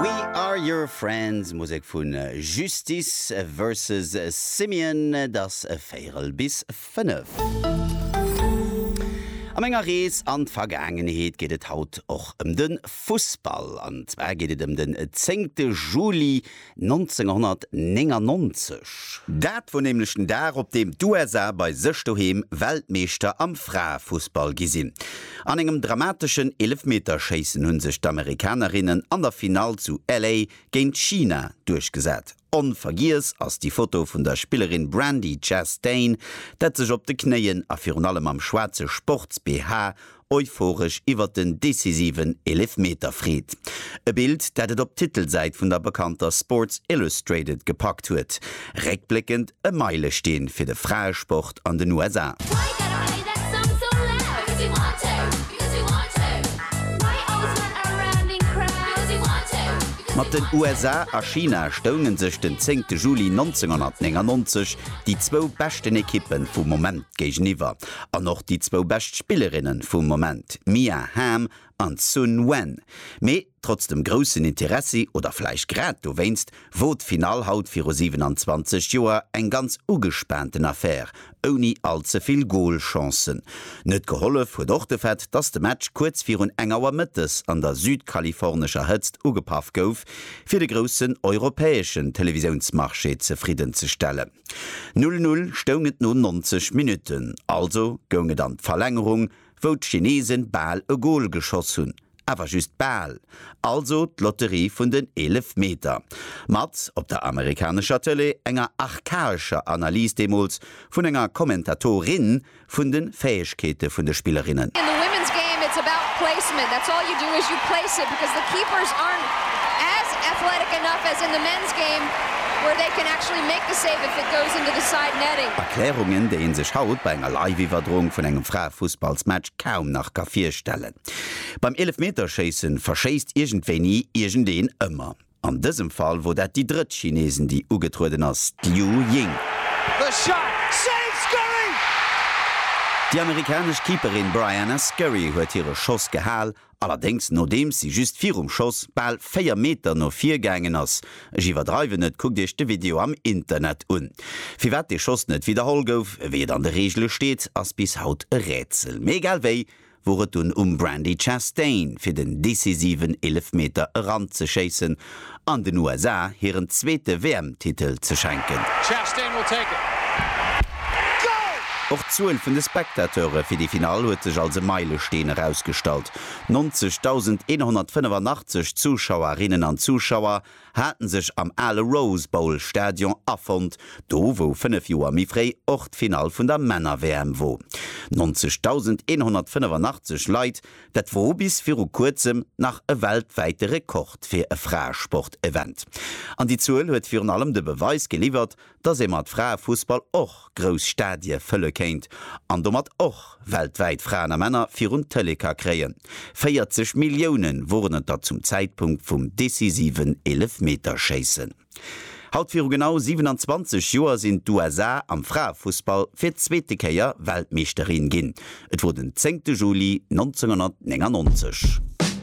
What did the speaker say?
We Are Your Friends, Musek vu Justice Versus Simian. Et ass véierel bis fënnef. A menger Rees an d'Vergaangenheet geet et haut och ëm de Fussball. An zwar geet et ëm den zéngte Juli 1999. Dat wor nämlech den Dag op deem d'USA bei sech doheem Weltmeeschter am Fraefussball gi sinn. An engem dramateschen Eelefmeterschéissen hunn sech d'Amerikanerinnen an der Finall zu LA géint China duerchgesat. Onvergiess ass déi Foto vun der Spillerin Brandi Chastain, dat sech op de Knéien a virun allem am schwaarze Sports-BH euphoresch iwwert den decisiven Eelefmeter freet. E Bild, dat et op d'Titelsäit vun der bekannter Sports Illustrated gepackt huet. Réckbléckend e Meilesteen fir de Fraesport an den USA. Mat den USA a China stounge sech den zéngte Juli 1999 déi zwou beschten Ekippe vum Moment géigeniwwer. An och déi zwou bescht Spillerinne vum Moment, Mia Hamm an Sun Wen. Mee trotz dem groussen Interessi, oder vläicht grad dowéinst, wor d'Finall haut viru 27 Joer eng ganz ugespaanten Affär, ouni all ze vill Goalchancen. Net gehollef huet och de Fait, dass de Match kuerz virun eng Auer mëttes an der südkalifornescher Hëtzt ugepaff gouf, fir de groussen europäeschen Televisiounsmarché zefridden ze stellen. Null Null stoung et no 90 Minutten, also goung et an d'Verlängerung, wou d'Chinesen bal e Gol geschoss hunn, awer just bal, also d'Lotterie vun den Eelefmeter. Mat op der amerikanescher Tëlee enger archaescher Analys deemools vun enger Kommentatorin, vun de Fäegkeete vun de Spillerinnen. In the women's game it's about placement, that's all you do is you place it because the keepers aren't as athletic enough as in the men's game where they can actually make the save if it goes into the side netting. Erklärungen, déi ee sech haut bei enger Live-Iwwerdroung vun engem Fraefussballsmatch kaum nach ka virstellen. Beim Eelefmeterschéissen verschéisst iergendwéini iergendeen ëmmer. An dësem Fall wor dat déi drëtt Chineesin déi ugetrueden ass, d'Liu Ying. Déi amerikanesch Keeperin Briana Scurry huet hire Schoss gehal, allerdéngs nodeems si just virum Schoss bal 4 Meter no vir gaangen ass. Ech iwwerdreiwen net, kuckt iech de Video am Internet un. Firwat dee Schoss net widderholl gouf, wéi et an de Reegele steet, ass bis haut e Rätsel. Mee egal wéi, wor et dunn um Brandi Chastain fir den decisiven Eelefmeter eranzeschéissen an den USA hiren zweete WM-Titel ze schenken. Och d'Zuel vun de Spectateure fir déi Finall huet sech als e Meilesteen erausgestallt, 90.185 Zuschauerinnen an Zuschauer haten sech am ale Rose Bowl Stadion afonnt, do wou 5 Joer méi fréi och d'Finall vun der Männer-WM wor. 90.185 Leit, dat wor bis viru kuerzem nach e weltwäite Rekord fir e Fraesport-Event. An déi Zuel huet virun allem de Beweis geliwwert, dass ee mat Fraefussball och grouss Stadie fëlle kéint an domat och weltwäit Fraen a Männer virun d'Tëlee ka kréien. 40 Millioune woren et der zum Zäitpunkt vum decisiven Eelefmeterschéissen. Haut viru genau 27 Joer sinn d'USA am Fraefussball fir d'zweete Kéier Weltmeeschterin ginn. Et wor den zéngte Juli 1999.